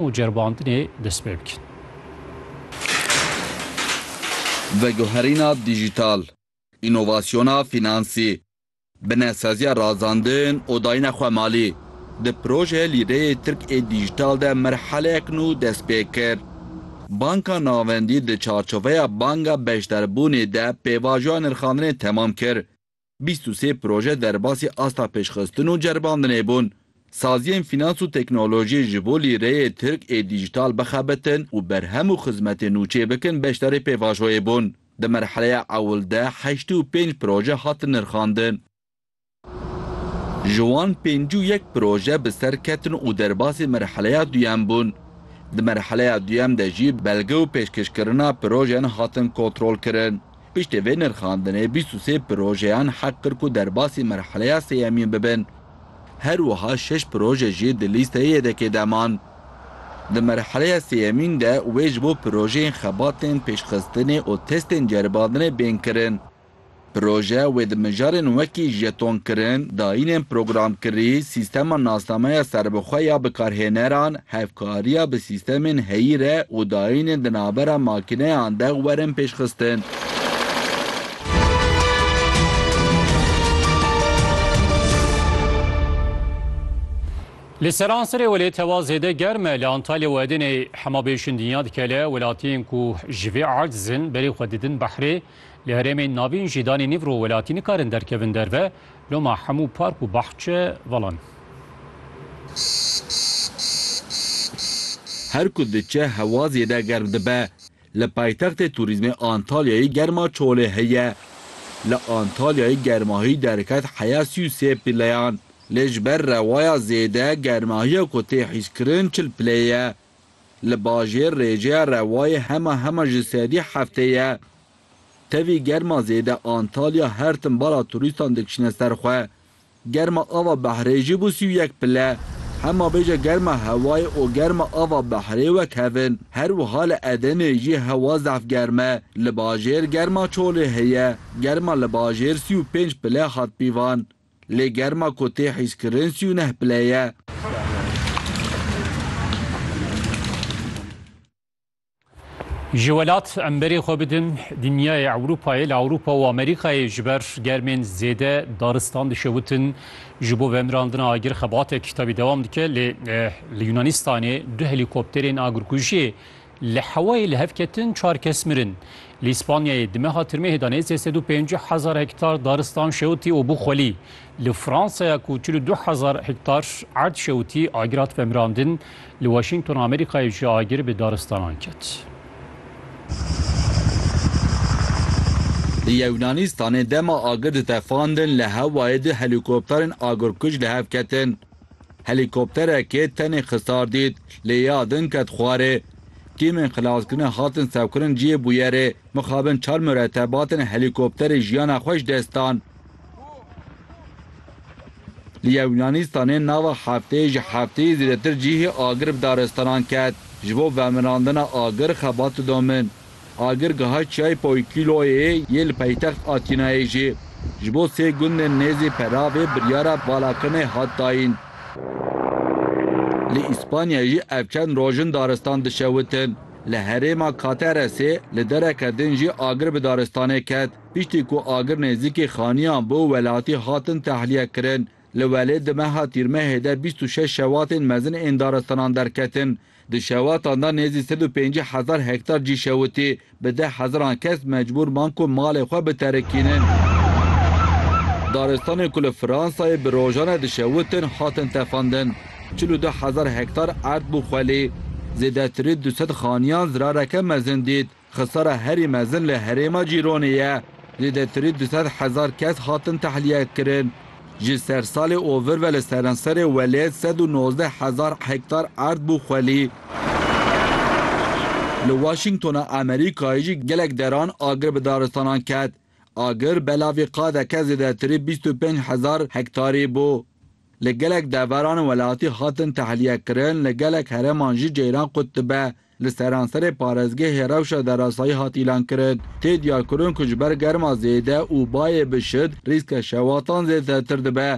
û ceribandinê dest pê bikin. Veguherîna dîjîtal, înovasyona fînansî, binesaziya razandin û dayîna xwe malî di projeyê Lîreyê Tirk ê Dîjîtal de merheleyek nû dest pê kir. Banka Navendî di çarçoveya Banga Beşdarbûnê de pêvajoya nirxandinê temam kir Bîst û sê proje derbasî asta pêşxistin û ceribandinê bûn. Saziyên fînans û teknolojiyê ji bo lîreyê tirk ê dîjîtal bixebitin û berhem û xizmetên nû çêbikin beşdarî pêvajoyê bûn. Di merheleya ewil de heştê û pênc proje hatin nirxandin. Ji wan pêncî û yek proje bi ser ketin û derbasî merheleya duyem bûn. Di merheleya duyem de jî belge û pêşkêşkirina projeyan hatin kontrolkirin. Piştî vê nirxandinê bîst û sê projeyan heq kir ku derbasî merheleya sêyemîn bibin. Her wiha şeş proje jî di lîsteyê yedekê de man. Di merheleya sêyemîn de wê ji bo projeyên xebatên pêşxistinê û testên ceribandinê bên kirin. Proje wê di mijarên wekî jetonkirin, dayînên programkirî, sîstema nasnameya serbixwe ya bikarhêneran, Hevkariya bi sîstemên heyî re û dayînên di navbera makîneyan de werin pêşxistin. Li Seransirê welêt hewa zêde germ e. Li Antalya û Edeneyê hema bêşin dinya dikele. Welatiyên ku ji vê erdz in berê xwe didin behrê. Li herêmên navîn jî danê nîv rû welatî nikarin derkevin derve, loma hemû park û bahçe velan. Her ku diçe hewa zêde germ dibe. Li paytextê tûrîzmê Antalyayê germa çolê heye. Li Antalyayê germahî derket heya sî û sê pileyan. Lê ji ber rewaya zêde germahiya ku tê hîskirin çil pileyê ye. Li bajêr rêjeya rewayê hema hema ji sedî heftê ye. Tevî germa zêde Antalya her tim bala turîstan dikişîne ser xwe. Germa ava behrê jî bû sî û yek pile. Hema bêje germa hewayê û germa ava behrê wek hev in. Her wiha li Edeneyê jî hewa zehf germ e. Li bajêr germa çolê heye. Germa li bajêr sî û pênc pile hat pîvan. Lê germa ku tê hîskirin sî û neh pile ye. Ji welat em berê xwe bidin dinyayê Ewropayê li Ewropa û Amerîkayê ji ber germên zêde daristan dişewitin. Ji bo vemirandina agir xebatek tabî dewam dike lê li Yûnanîstanê du helîkopterên agirkujiyê Li hewayê li hev ketin çar kes mirin. Li Îspanyayê di meha tirmehê de nêzî sed û pêncî hezar hektar daristan şewitî û bû xwelî. Li Fransaya ku çil û du hezar hektar erd şewitî, agir hat vemirandin. Li Washingtona Amerîkayê jî agir bi daristanan ket. Li Yewnanistanê dema agir ditefandin li hewayê du helîkopterên agirkuj li hev ketin. Helîkopterekê tenê xisar dît, lê ya din ket xwarê. Tîmên xilaskirinê hatin sevkirin cihê bûyerê, mixabin çar muretebatên helîkopterê jiyana xwe ji dest dan. Li Yewnaanistanê nava hefteyê ji hefteyê zêdetir cihê agir bi daristanan ket. Ji bo vemirandina agir xebat didomin. Agir geha çiyayê Poykîloyê yê li paytext Atînayê jî ji bo sê gundên nêzî Peravê biryara valakirinê hat dayîn. Li Îspanya jî ev çend roj in daristan dişewitin. Li herêma Cateresê li dereke din jî agir bi daristanê ket. Piştî ku agir nêzîkî xaniyan bû welatî hatin tehliyekirin. Li welê di meha Tîrmehê de bîst û şeş şewatên mezin ên daristanan derketin. Di şewatan de nêzî sed û pêncî hezar hektar cî şewitî, bi deh hezaran kes mecbûr man ku malê xwe biterikînin. Daristanên ku li Fransayê bi rojan e dişewitin hatin tefandin. Çil û du hezar hektar erd bû xwelî. Zêdetirî du sed xaniyan zirareke mezin dît. Xisara herî mezin li herêma Cîronê ye. Zêdetirî du sed hezar kes hatin tehlîyekirin. Ji sersalê û vir ve li seranserê welê sed û nozdeh hezar hektar erd bû xwelî. Li Washingtona Amerîkayê jî gelek deran agir bi daristanan ket. Agir belavî qadeke zêdetirî bîst û pênc hezar hektarî bû. Li gelek deveran welatî hatin tehlîyekirin, li gelek hereman jî ceyran qut dibe. Li seranserê parêzgehê rewşa derasayî hat îlankirin. Tê diyarkirin ku ji ber germa zêde û bayê bi şid rîska şewatan zêdetir dibe.